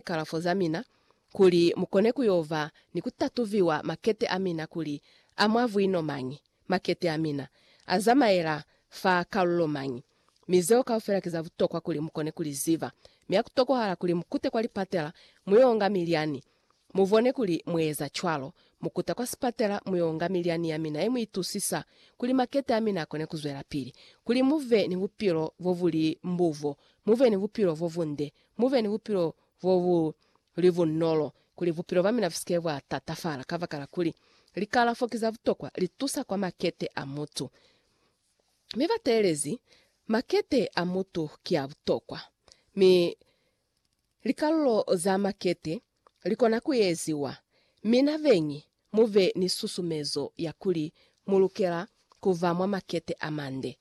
kalafo za mina, kuli mukone kuyova ni kutatuviwa makete amina kuli a mwa vwino mañi, makete amina azamaela fa kalulo mañi. Mi zeo kaufela ki za butokwa kuli mukone kuliziba. Mi hakutokohala kuli mukute kwa lipatela muyo nga milyani. Mubone kuli mueza cwalo, mukuta kwa sipatela muyo nga milyani yamina ye muitusisa, kuli makete amina akone kuzwelapili, kuli muve ni bupilo bobuli mbubo, muve ni bupilo bobunde, Mu be ni bupilo bo bu li bunolo, kuli bupilo bwa mina bu si ke bwa tatafala, kabakala kuli, likalafo ki za butokwa, li tusa kwa makete a mutu. Mi ba teelezi, Makete a mutu ki a butokwa. Mi likalulo za makete li kona ku eziwa. Mina beñi, mu be ni susumezo ya kuli mu lukela ku ba mwa makete a mande.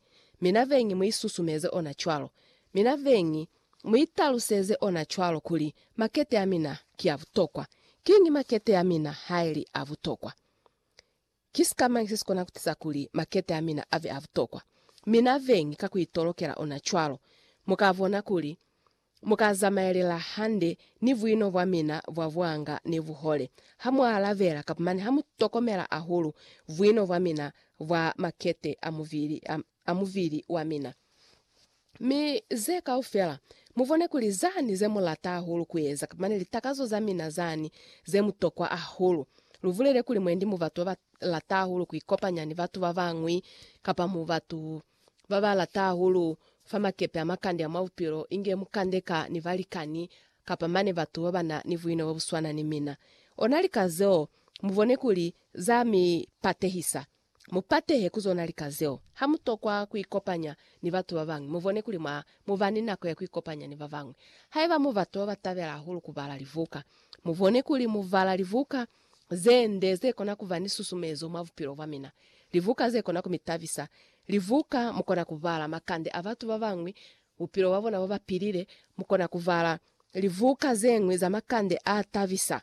Mina beñi mu isusumeze ona cwalo. Mina beñi mu italuseze ona cwalo kuli, Makete a mina ki a butokwa. Kiñi makete a mina haili a butokwa? Ki sikamañi sesikona kutiza kuli makete amina abe abutokwa? Mina vengi ka kuitolokela ona cwalo. Mukabona kuli mukazamaelela hande ni buino bwamina bwa buanga ni buhole hamualabela, kabumani hamutokomela ahulu buino bwamina bwa makete amubili a. a mubili wa mina. Mi ze kaufela, mubone kuli zani ze mulata hahulu kueza, mane litakazo za mina zani ze mutokwa hahulu. Lubulele kuli mwendi mu batu baba lata hahulu kuikopanya ni batu babañwi, kapa mu batu baba lata hahulu fa makepe a makande a mwa bupilo, inge mukande ka ni balikani, kapa mane batu babana ni buino bobuswana ni mina. Ona lika zeo, mubone kuli za mi patehisa. Mu patehe ku zona lika zeo. Ha mu tokwa ku ikopanya ni batu ba bañwi, mu bone kuli mwa mu ba ni nako ya ku ikopanya ni ba bañwi. Haiba mu batu ba ba tabela hahulu ku bala libuka, mu bone kuli mu bala libuka ze nde ze kona ku ba ni susumezo mwa bupilo bwa mina, libuka ze kona ku mi tabisa, libuka mu kona ku bala makande a batu ba bañwi, bupilo bwa bona bo ba pilile, mu kona ku bala libuka ze ñwi za makande a tabisa.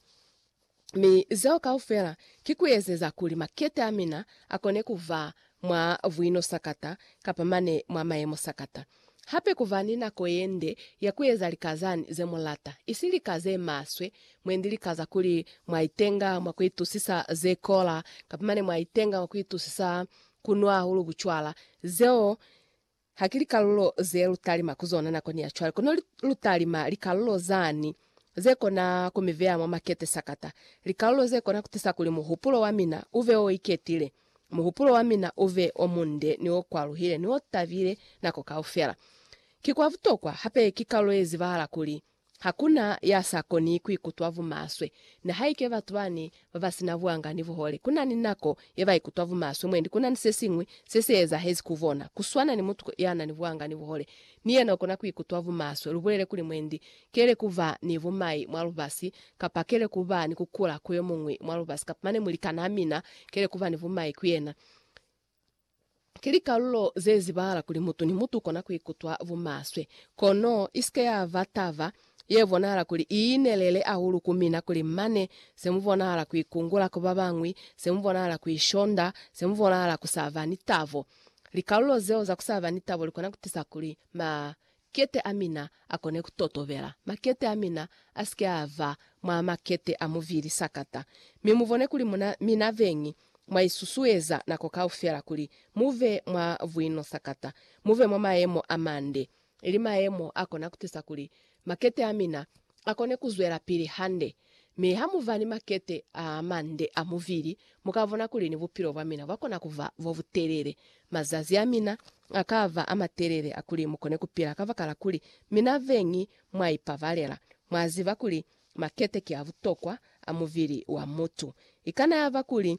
Mi zeo kaufela ki kuezeza kuli makete amina akone kuva mwa buino sakata kapa mane mwa mayemo sakata. Hape kuva ni nako yende ya kueza lika zani zemulata, isi lika zemaswe, mwendi lika za kuli mwaitenga mwa kuitusisa zekola kapa mane mwaitenga mwa kuitusisa kunwa hahulu bucwala, zeo Ha ki likalulo ze lu talima ku zona nakoni ya cwale, kono lu talima likalulo zani ze kona ku mi veya mwa makete sakata, likalulo ze kona ku tisa kuli muhupulo wa mina u ve o iketile, muhupulo wa mina u ve o munde ni o kwaluhile ni o tabile nako kaufela. Ki kwa butokwa hape ki kalulo ye zibahala kuli Hakuna ya sa koni kuikutwa bumaswe, nihaike batu bani babasina buanga ni buhole. Kunani nako ye baikutwa bumaswe, mwendi kunani sesiñwi se se ezahezi ku bona. Kuswana ni mutu yanani buanga ni buhole, ni yena ukona kuikutwa bumaswe. Lubulele kuli mwendi kele kuba ni bumai mwa lubasi, kapa kele kuba ni kukula ku yomuñwi mwa lubasi, kapa mane mulikanaa mina kele kuba ni bumai ku yena. Ki likalulo ze zibahala kuli mutu ni mutu ukona kuikutwa bumaswe. Kono isike yaba taba ye bonahala kuli iinelele hahulu ku mina kuli mane se mubonahala kuikungula ku babañwi, se mubonahala kuishonda, se mubonahala kusaba ni tabo. Likalulo zeo za kusaba ni tabo likona kutisa kuli ma Makete a mina a kone ku totobela. Makete a mina a si ke a ba mwa makete a muvili sakata. Mi mu bone kuli muna, mina beñi, mwa isusueza nako kaufela kuli mu be mwa buino sakata, mu be mwa mayemo a mande, ili mayemo a kona ku tisa kuli makete a mina akone kuzwelapili hande. Mi hamuva ni makete aamande a mubili, mukabona kuli ni bupilo bwamina bwakona kuba bobutelele. Mazazi amina akaba amatelele akuli mukone kupila kabakala kuli mina beñi mwaipabalela. Mwaziba kuli makete ki abutokwa a mubili wa mutu. Ikana yaba kuli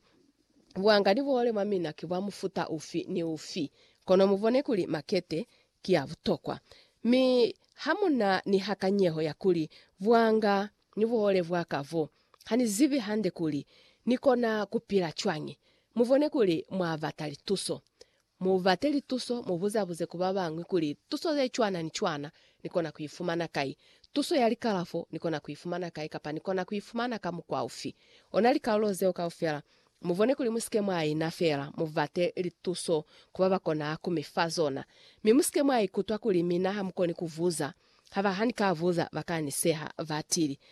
buhanga ni buhole mwamina ki bwa mufuta ufi ni ufi, kono mubone kuli makete ki ya butokwa, mi ha mu na ni hakanyeho ya kuli bwanga ni buhole bwa ka bo, ha ni zibi hande kuli ni kona ku pila cwañi, mu bone kuli mwa bata lituso. Mu bate lituso, mu buza-buze ku ba bañwi kuli, Tuso ye cwana ni cwana ni kona ku i fumana kai? Tuso ya likalafo ni kona ku i fumana kai, kapa ni kona ku i fumana ka mukwa ufi? Ona likalulo zeo kaufela Mubone kuli musike mwa ina feela, mubate lituso ku babakona ku mi fa zona. Mi musike mwa ikutwa kuli mina hamukoni kuvuza. Haba hanika vuza, baka ni seha, batili.